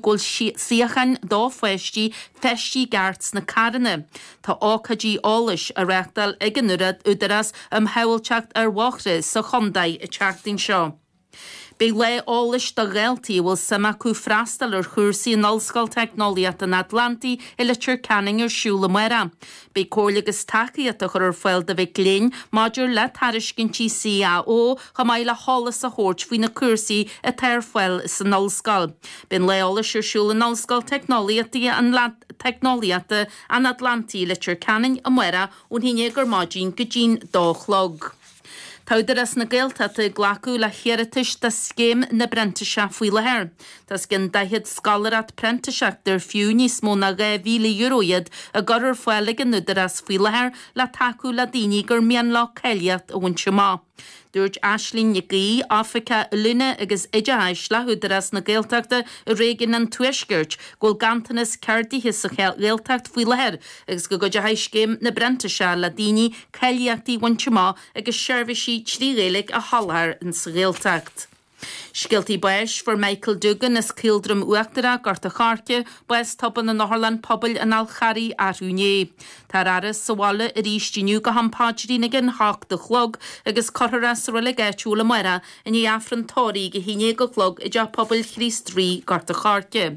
go bhfuil suíocháin do pháistí feistithe i gceart sna carranna. Tá ócáidí eolais á reachtáil ag an Údarás um Shábháilteacht ar Bhóithre sa Chontae an tseachtain seo. Beidh lá eolais do dhaltaí a bhfuil suim acu freastal ar chúrsaí in Ollscoil Teicneolaíochta an Atlantaigh i Leitir Ceanainn ar siúl i Maigh Eo Beidh comhairle agus tacaíocht a chur ar fáil do mhic léinn maidir le tairiscintí CAO chomh maith le heolas a thabhairt faoi na cúrsaí atá ar fáil san Ollscoil. Beidh an Lá Eolais ar siúl in Ollscoil Teicneolaíochta an Atlantaigh i Leitir Ceanainn amáireach ón 11 ar maidin go dtí'n dó a chlog. Tá Údarás na Gaeltachta ag glacadh le hiarratais do Scéim na bPrintíseach faoi láthair. Tá os cionn 40 scoláireacht printíseachta ar fiú níos mó ná €2,000 iad á gcur ar fáil ag an Údarás faoi láthair le tacú le daoine gur mian leo cáilíocht a bhaint amach. Dúirt Aislinn Nic Aoidh, Oifigeach Oiliúna agus Oideachais le hÚdarás na Gaeltachta i réigiún an Tuaiscirt, go bhfuil ganntanas ceardaithe sa Ghaeltacht faoi láthair agus go gcuideochaidh Scéim na bPrintíseach le daoine cáilíochtaí a bhaint amach agus seirbhísí trí Ghaeilge a sholáthar insa Ghaeltacht. Scéaltaí Báis Fuair Michael Doogan as Caoldroim Uachtarach, Gort a Choirce, bás tobann in Otharlann Pobail an Fhál Charraigh arú inné. Tá a fhaire sa bhaile arís inniu go ham paidrín ag an 8 a chlog agus cuirfear é sa Reilig áitiúil amáireach i ndiaidh Aifreann Tórraimh a haon déag a chlog i dTeach Pobail Chríost Rí, Gort a Choirce.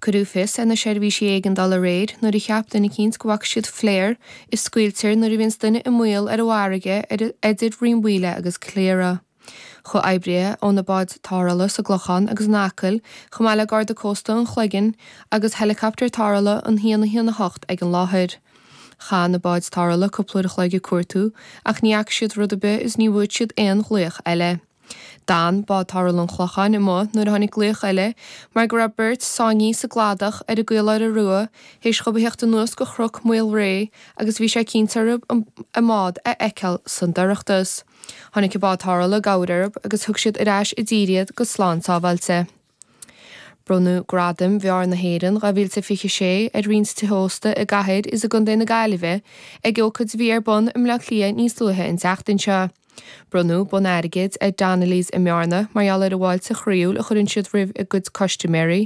Cuireadh fios ar na seirbhísí éigeandála aréir nuair a cheap duine eicínt go bhfaca siad flare a scaoiltear nuair a bhíonns duine i mbaol ar an bhfarraige eidir Rinn Mhaoile agus Cliara. Chuaigh oibrithe ó na báid tarrthála sa gClochán agus in Acaill, chomh maith le Garda Cósta an Chloiginn agus helicopter tarrthála 118 ag an láthair. Chaith na báid tarrthála cúpla uair a chloig ag cuartú ach ní fhaca siad rud ar bith is ní bhfuair siad aon ghlaoch eile. D'fhan bád tarrthála an Chlocháin amuigh nuair a tháinig glaoch eile mar go raibh beirt sáinnithe sa gcladach ar an gCaoláire Rua théis dhóibh a thíocht anuas go Chruc Maol Réidh agus bhí sé cinnte orthu a mbád a fheiceáil sa dorchadas tháinig an bád tarrthála i gcabhair orthu agus thug siad ar ais i dtír iad go slán sábháilte. Bronnadh Gradaim Bheáir na hÉireann 2026 ar roinnt tithe ósta i gCathair is i gContae na Gaillimhe ag ócaid a bhí ar bun i mBleá Cliath níos luaithe an tseachtain seo. Bronnadh bonn airgid ar Donnelly's i mBearna mar gheall ar an bhfáilte chroíúil a chuireann siad roimh a gcuid custaiméirí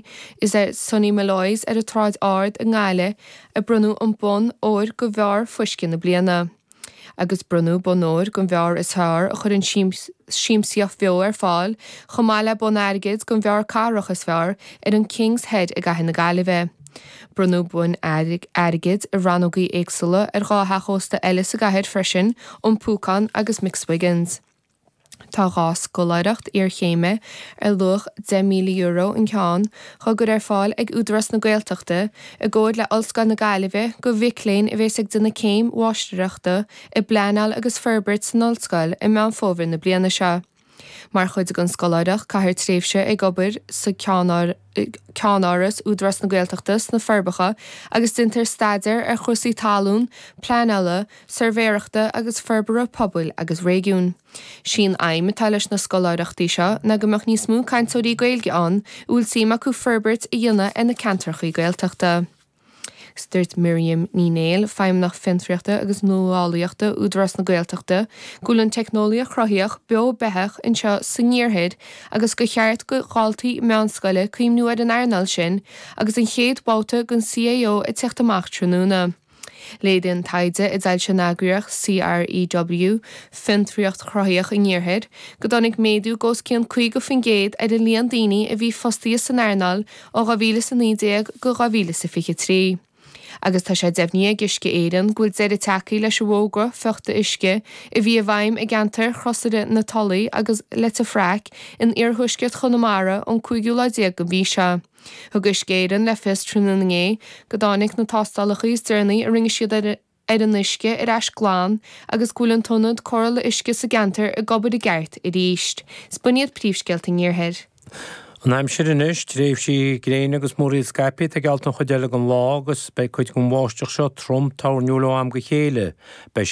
is ar Sonny Molloy's ar an tSráid Ard i nGaillimh a bronnadh an bonn óir go Bheár Fuisce na Bliana. agus bronnadh Bonn Óir don bheár is fearr a chuireann siamsaíocht bheo ar fáil, chomh maith le Bonn Airgid don bheár cathrach is fearr, ar an Kings Head i gCathair na Gaillimhe. Bronnadh boinn airgid i rannógaí éagsúla ar dhá theach ósta eile sa gcathair freisin, An Púcán agus McSwiggan's. Tá dhá scoláireacht iarchéime ar luach €10,000 an ceann tugtha ar fáil ag Údarás na Gaeltachta i gcomhar le Ollscoil na Gaillimhe do mhic léinn a bhéas ag dul don chéim mháistreachta i bpleanáil agus forbairt san Ollscoil i Meán Fómhair na bliana seo mar chuid den scoláireacht caithfear tréimhse ag obair sa Ceann ceannáras Údarás na Gaeltachta sna Forbacha agus déanfar staidéar ar chúrsaí talún, pleanála, suirbhéireachta agus forbartha pobail agus réigiún. Sí'n aidhm atá leis na scoláireachtaí seo ná go mbeadh níos mó cainteoirí Gaeilge ann a bhfuil suim acu forbairt a dhéanamh ar na ceantracha Gaeltachta. Agus dúirt Miriam Ní Néill, Feidhmeannach Fiontraíochta agus Nuálaíochta Údarás na Gaeltachta, go bhfuil an teicneolaíocht chruthaitheach beo beathach anseo sa nIarthar agus gur cheart do dhaltaí meánscoile cuimhniú ar an earnáil sin agus an chéad bhabhta den CAO ag teacht amach tráthnóna. Léiríonn taighde a d'fhoilsigh an eagraíocht CREW, Fiontraíocht Chruthaitheach an Iarthair, go dtáinig méadú de os cionn 50% ar an líon daoine a bhí fostaithe san earnáil ó 2019 go 2023, agus tá sé deimhnithe ag Uisce Éireann go bhfuil deireadh tagthaí leis an bhfógra fiuchta uisce a bhí i bhfeidhm i gceantar Chrosaire na Tulaí agus Leitir Fraic in iarthuaisceart Chonamara ón cúigiú lá déag den mhí seo. Thug Uisce Éireann le fios tráthnóna inné go dtáinig na tástálacha is deireanaí a rinne siad ar an ar an uisce ar ais glan agus go bhfuil an t-ionad cóireála uisce sa gceantar ag obair i gceart arís. Is b'in iad príomhscéalta an Iarthair. An aimsir anois, tréimhsí gréine agus múraíl scaipthe geallta an chuid eile den lá agus beidh cuid den bháisteach seo trom toirniúil ó am go chéile. Beidh sé.